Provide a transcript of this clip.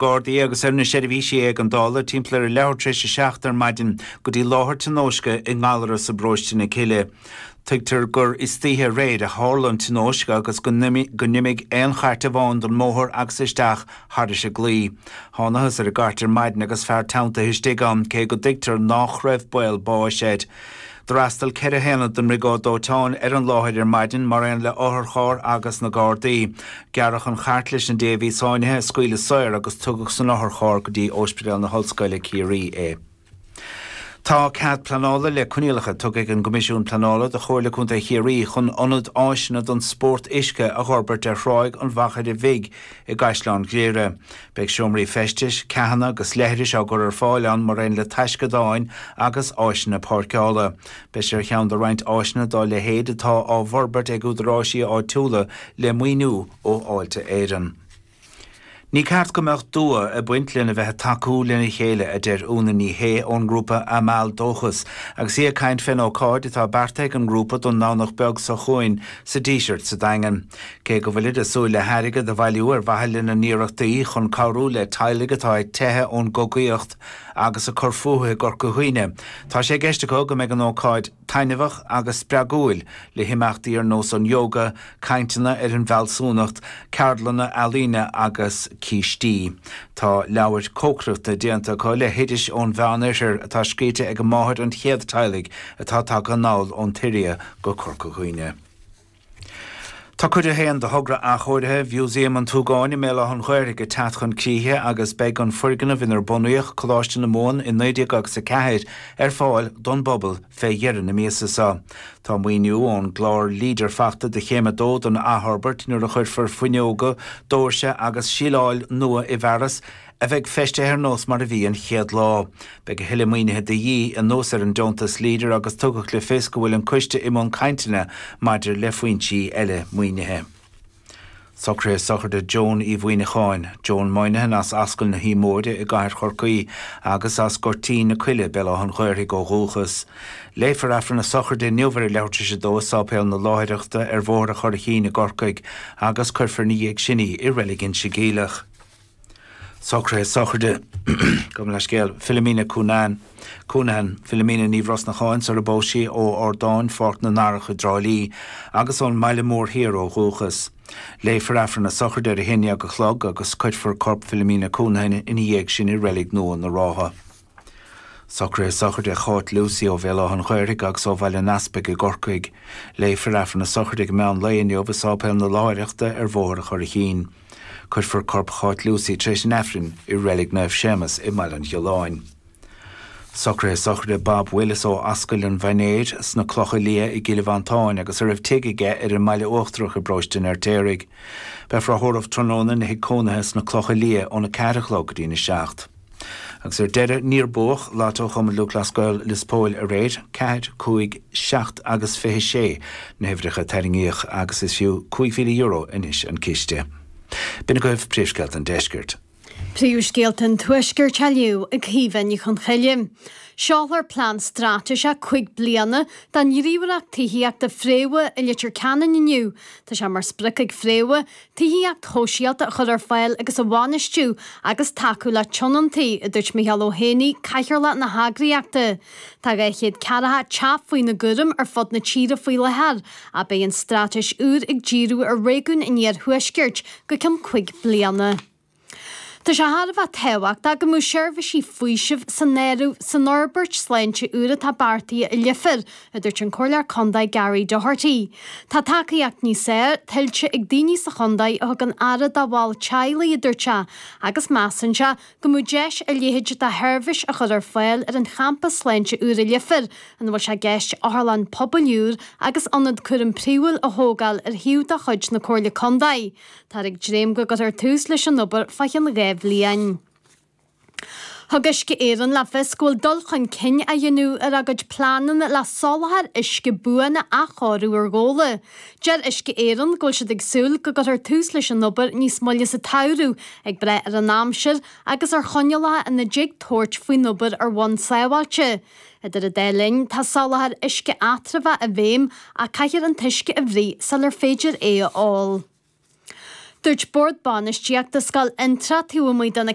Gardaí agus ar na seirbhísí éigeandála timpeall ar a leathuair tar éis a seacht ar maidin go dtí láthair tionóisce i nGallarus i bparóiste na Cille. Tuigtear gur istoíche aréir a tharla an tionóisc agus go n-imigh aon chairt amháin den mbóthar agus isteach thairis an gclaí. Thánathas ar an gcairt ar maidin agus fear teanntaithe istigh ann, cé go dtuigtear nách raibh baol báis air. D'fhreastail ceithre haonad den mBriogáid Dóiteáin ar an láthair ar maidin mar aon le otharcharr agus na Gardaí. Gearradh an chairt leis an té a bhí sáinnithe a scaoileadh saor agus tugadh san otharcharr go dtí Óispidéal na hOllscoile, Ciarraí é. Tá cead pleanála le coinníollacha tugtha ag an gCoimisiún Pleanála do Chomhairle Contae Chiarraí chun ionad áiseanna don spórt uisce a dh'fhorbairt ar Thráigh an Mhachaire Bhig, i gCaisleán Ghriaire. Beidh seomraí feistis, ceathanna agus leithris á gcur ar fáil ann maraon le taisceadáin agus áiseanna páirceála. Beidh sé ar cheann de roinnt áiseanna dá leithéid atá á bhforbairt ag údaráisí áitiúla le maoiniú ó Fháilte Éireann. Ní ceart go mbeadh dua ag baint lena bheith ag tacú lena chéile, a deir Úna Ní Shé ón ngrúpa Amal Dóchas agus í ag caint fén ócáid atá beartaithe ag an ngrúpa don nDomhnach beag seo chughainn sa Díseart sa Daingean. Cé go bhfuilid ag súil le hairgead a bhailiú ar mhaithe lena n-iarrachtaí chun cabhrú le teaghlaigh atá ag teitheadh ón gcogaíocht agus ag cur fúthu i gCorca Dhuibhne, tá sé i gceist acu go mbeidh an ócáid taitneamhach agus spreagúil, le himeachtaí ar nós an Yoga, cainteanna ar an bhFealsúnacht, ceardlanna ealaíne agus cístí. Tá leabhar cócaireachta déanta acu le hoidis ón Mheánoirthear atá scríte ag máthair an chéad teaghlaigh atá tagtha anall ón tSiria go Corca Dhuibhne. Tá Cuid 1 de Thogra Athchóirithe Mhúsaem an tSúgáin i mBéal Átha an Ghaorthaidh ag teacht chun críche agus beidh an foirgneamh inar bunaíodh Coláiste na Mumhan i 1904 ar fáil don bpobal fé dheireadh na míosa so. Tá maoiniú ón gClár Leader fachta do Chéim 2 den athfhorbairt nuair a chuirfear fuinneoga, dóirse agus síleáil nua i bhfearas. a bheidh feistithe ar nós mar a bhí an chéad lá. Beidh a thuilleadh maoinithe de dhíth, anuas ar an deontas Leader agus tugadh le fios go bhfuil an coiste i mbun cainteanna maidir le foinsí eile maoinithe. Socruithe sochraide Joan Uí Mhuíneacháin, Joan Moynihan as Ascaill na hUaimhe Móire i gCathair Chorcaí agus as Goirtín na Coille, Béal Átha'n Ghaorthaidh ó dhúchas. Léifear Aifreann a sochraide inniu ar a leathuair tar éis a dó i Sáipéal na Láithreachta ar Bhóthar a' Churraichín i gCorcaigh agus cuirfear ina dhiaidh sin í i Reilig Inse Geimhleach. Socruithe sochraide, gabh mo leithscéal, Philomena Coonan, Counihan, Philomena Ní Bhrosnacháin sara bpós sí, ó Ardán Pháirc na nDarach i dTrá Lí, agus ón mBaile Mór Thiar ó dhúchas. Léifear Aifreann a sochraide ar a haon déag a chlog agus cuirfear corp Philomena Counihan ina dhiaidh sin i Reilig Nua na Rátha. Socraithe sochraide Cháit Lucey ó Bhéal Átha an Ghaorthaidh agus ó Bhaile an Easpaig i gCorcaigh. Léifear Aifreann na sochraide ag meán lae inniu i Séipéal na Láithreachta ar Bhóthar an Churraichín. Cuirfear corp Cháit Lucey tar éis an Aifrinn i Reilig Naomh Séamas i mBaile an Ghealáin. Socraithe sochraide Bob Willis ó Ascaill an Mhainéir sna Clocha Liath i gCill Mhantáin agus a raibh tigh aige ar an mBaile Uachtarach i bParóiste an Fheirtéaraigh. Beifear á thórramh tráthnóna ina thigh cónaithe sna Clocha Liath óna ceathair a chlog go dtí'n a seacht. Agus ar deireadh, níor buadh Lotto Chumann Lúthchleas Gael Lios Póil aréir. Ceathair, cúig, seacht agus fiche sé na huimhreacha a tarraingíodh agus is fiú €5,000 anois an ciste. B'in agaibh Príomhscéalta an Deiscirt. Príomhscéalta an Tuaiscirt á léamh ag Caoimhe Ní Chonchoille. Seolfar plean straitéiseach cúig bliana don ghníomhaireacht tithíochta Fréamha i Leitir Ceanainn inniu. Tá sé mar sprioc ag Fréamha Tithíocht shóisialta a chur ar fáil agus a bhainistiú agus tacú le tionóntaí, a dúirt Micheál Ó hÉanaí, Cathaoirleach na heagraíochta. Tá 240 teach faoina gcúram ar fud na tíre faoi láthair, ach beidh an straitéis úr ag díriú ar réigiúin in iarthuaisceart go ceann cúig bliana. Tá sé thar a bheith tábhachtach go mbeadh seirbhísí faoisimh san áireamh san fhorbairt sláinte úr atá beartaithe i Leifear, a dúirt an Comhairleoir Contae Gary Doherty. Tá tacaíocht níos fhearr tuillte ag daoine sa chontae a thugann aire dá bhaill teaghlaigh, a dúirt sé, agus measann sé go mbeadh deis a leithéid de sheirbhís a chur ar fáil ar an champas sláinte úr i Leifear, ina bhfuil sé i gceist otharlann pobail úr agus ionad cúraim príomhúil a thógáil ar shuíomh de chuid na Comhairle Contae. Táthar ag dréim go gcuirfear tús leis an obair fá chionn dhá bhliain. Thug Uisce Éireann le fios go bhfuil dul chun cinn á dhéanamh ar a gcuid pleananna le soláthar uisce buan a athchóiriú ar Ghabhla. Deir Uisce Éireann go bhfuil siad ag súil go gcuirfear tús leis an obair níos moille sa tsamhradh ag brath ar an aimsir agus ar choinníollacha ina dtig tabhairt faoin obair ar bhonn sábháilte. Idir an dá linn, tá soláthar uisce eatramhá i bhfeidhm ach caithfear an t-uisce a bhruith sular féidir é a ól. Dúirt Bord Bainistíochta Scoil Fhionn Trá taobh amuigh de na